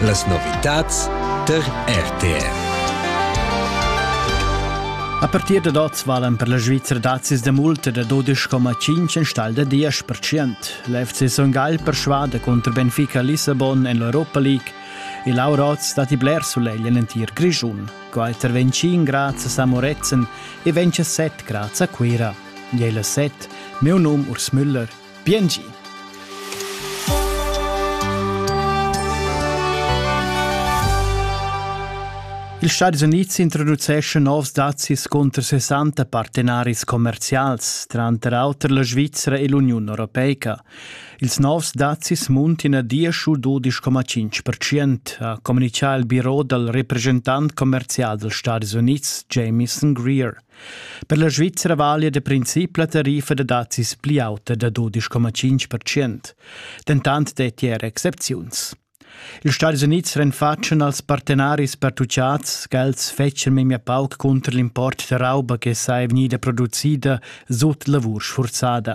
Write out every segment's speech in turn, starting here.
Las novitads tar RTR. A partir da oz valan per la Svizra dazis da multa da 12,5 enstagl da 10%. La FC Son Gagl persvada contro Benfica Lissabon en l'Europa League e Laura Oz datti bler sulegl en entir Grischun. Qualter vegn 5 grads a Samorezen e vegn 7 grads a Cuira. Jela 7, meu num Urs Müller Bien gi! Ils Stadis Unids introduceschan novs dazis cunter 60 partenaris commerzials, tranter auter la Svizra e l'Uniun europeica. Ils novs dazis muntin a diesch u 12,5%, ha communitgà il biro dal represchentant commerzial dals Stadis Unids Jamieson Greer. Per la Svizzera valia da princip la tariffa da dazis pli auta da 12,5%, dentant detti era excepziuns. Ils Stadis Unids renfatschan als partenaris pertuchads ch'els fetschan memia pauc cunter l'import da rauba che sei vegnida producida sut lavur sfurzada.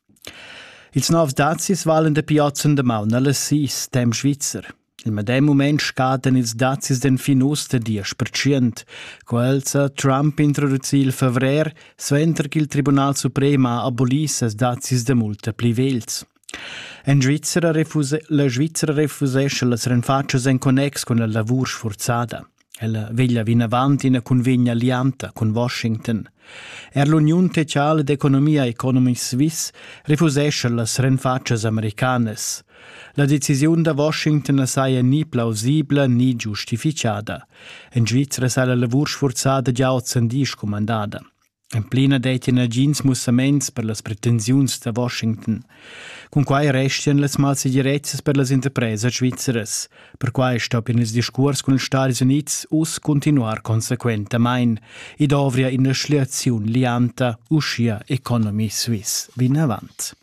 Ils novs dazis valan dapi oz en damaun alla sis temps svizzer. Il medem mument scadan ils dazis d'enfin uss da diesch percent. Quels ha Trump introducì il fevrer, suenter ch'il Tribunal suprem ha abolì ses dazis da multa pli vegls. En Svizzera refuse, la Svizzera refusescha las renfatschas en connex cun la lavur sfurzada. Ella veglia vinavant ina cunvegna lianta cun Washington. Er l'Uniun Sociala d'Economia Economic Swiss refusescha las renfatschas americanas. La decisiun da Washington saja ni plausibla ni giustifichada. En Svizra sa la lavur sfurzada gia ozendi scumandada. En plena dettia nagins mussaments per las pretensiuns da Washington. Cun quai restian las malsegirezzas per las interpresas svizzeras. Perquai stoppian ils discurs cun ils Stati Unids uss continuar consequentamain. I dovria ina schliaziun lianta, uschia Economy Suisse vinavant.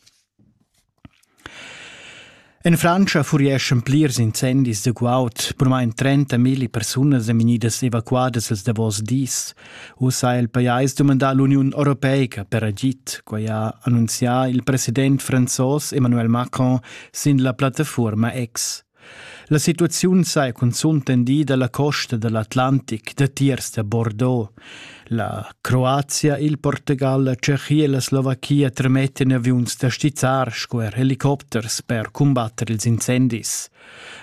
En Frantscha furieschan plirs incendis da guaud. Burmain 30 milli persunas èn vegnidas evacuadas ils davos dis. Ussa ha il pajais dumandà l'Uniun europeica per agid. Quai ha annunzià il president franzos Emmanuel Macron sin la plattafuorma X. La situaziun saja cunzunt tendida la costa da l'Atlantic, datiers da Bordeaux. La Croazia, il Portugal, la Tschechia e la Slovachia tremettan aviuns da stizzar sco er helicopters per cumbatter ils incendis.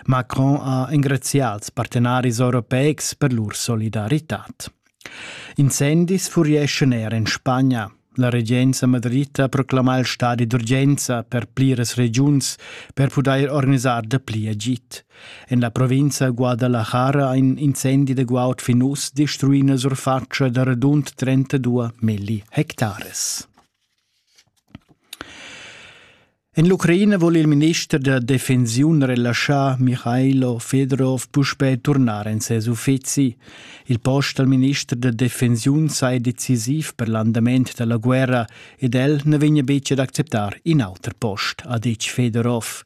Macron ha engrazià als partenaris europeics per lur solidaritad. Incendis furieschan er en Spagna. La regenza madrita proclama il stadi d'urgenza per pliras regiuns per pudair organisar dapli agid. En la provinza Guadalajara ha in incendi de guaud fin uss destruì una surfatscha da radund 32 milli hectares. En l'Ucraina vul il minister da defensiun relaschar Mihailo Fedorov puspè turnar en ses uffizi. Il post al minister da defensiun sei decisiv per l'andament dalla guerra ed el ne vegna betg ad acceptar in auter post, ha detg Fedorov.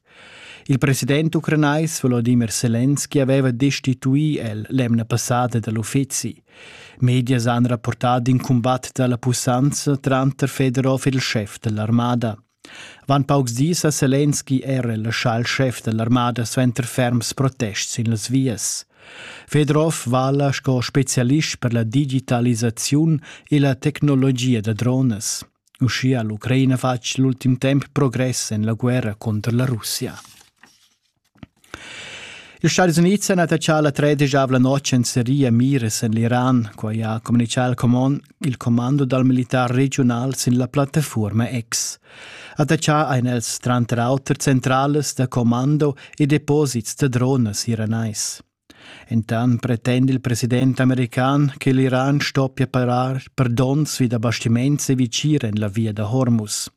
Il president ucranais Volodymyr Zelensky aveva destituì el l'emna passada dall'uffizi. Medias han rapportà in cumbat dalla pussanza tranter Fedorov ed il chef dell'armada. Avant paucs dis ha Selenski era laschà il schef da l'armada suenter ferms protests sin las vias. Fedorov vala sco spezialist per la digitalisaziun e la tecnologia da dronas. Uschia ha l'Ucraina fatg l'ultim temp progress en la guerra contro la Russia. Ils Stadis Unids han attaccà la tredeschavla notg en seria miras en l'Iran. Quai ha communitgà il, command, il commando dal militar regiunal sin la plattafuorma X. Attaccà ein els tranter auter centralas da commando e deposits da dronas iranais. Entan pretenda il president american che l'Iran stoppia parar per donns vi da bastiments e vicir en la via da Hormuz.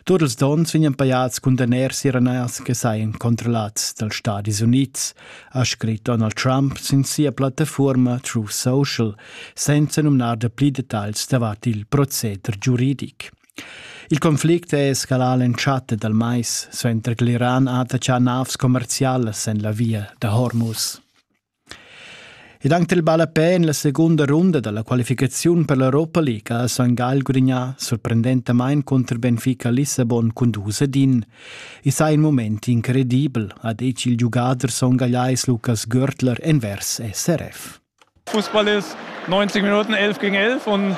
Tut ils donns vegnan pajads condaners iraners che sajan controllats dals Stadis Unids, ha scrit Donald Trump sin sia plattafuorma True Social, senza numnar da pli detagls davart il proceder giuridic. Il conflict è escalà l'entschatta dal mais suenter l'Iran ha attachà navs commerzialas en la via da Hormuz. Ed anche il ballapè en la segunda runda della qualificazione per l'Europa League ha San Gal gudignà sorprendentamain contro Benfica Lissabon con 2 din. Is ha in moment incredibel, ha detg il giugader songagliais Lukas Görtler envers SRF. Fußball ist 90 Minuten 11 gegen 11 und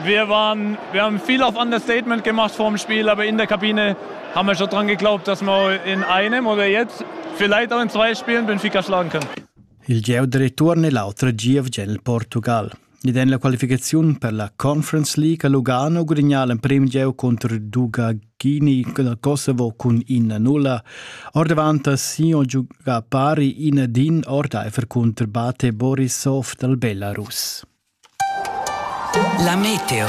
wir, waren, wir haben viel auf Understatement gemacht vor dem Spiel, aber in der Kabine haben wir schon dran geglaubt, dass wir in einem oder jetzt vielleicht auch in zwei Spielen Benfica schlagen können. Il geu de return è l'altra GFG nel Portugal. Ed en la qualificazione per la Conference League a Lugano guadagna l'emprim geu contro il Duga chini la Kosovo cun ina nulla. Ordavant Sion giuga pari ina din ordaifer cunter Bate Borisov dal Belarus. La meteo.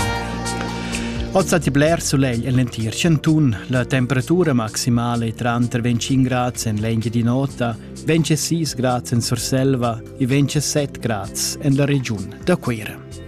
Ozza ti bler solegl en l'entir Cantun. La temperatura maximale è tranter 25 grad en l'engi di nota, 26 grad en Surselva e 27 grad en la regiun da Cuira.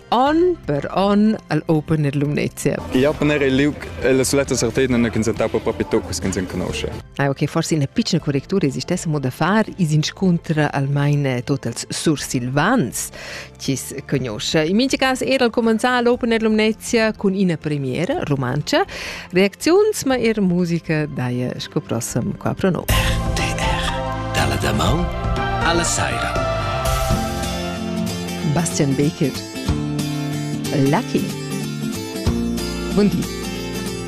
On per on al Open er Lumnezia. I open era il liug e la suletta sortida non consentau per propi tuccus che sen conosce. Ah, ok, forse una piccola correttura esistesse modo da far is inscontra almain tot els sursilvans chi conosce. In minchi cas era al comenzar l'Open Air Lumnezia con ina premiera romancia, Reacziuns ma eir musica daja sco prossam qua pro no. RTR dalla damau alla saira. Bastian Baker. Lucky. Buondì.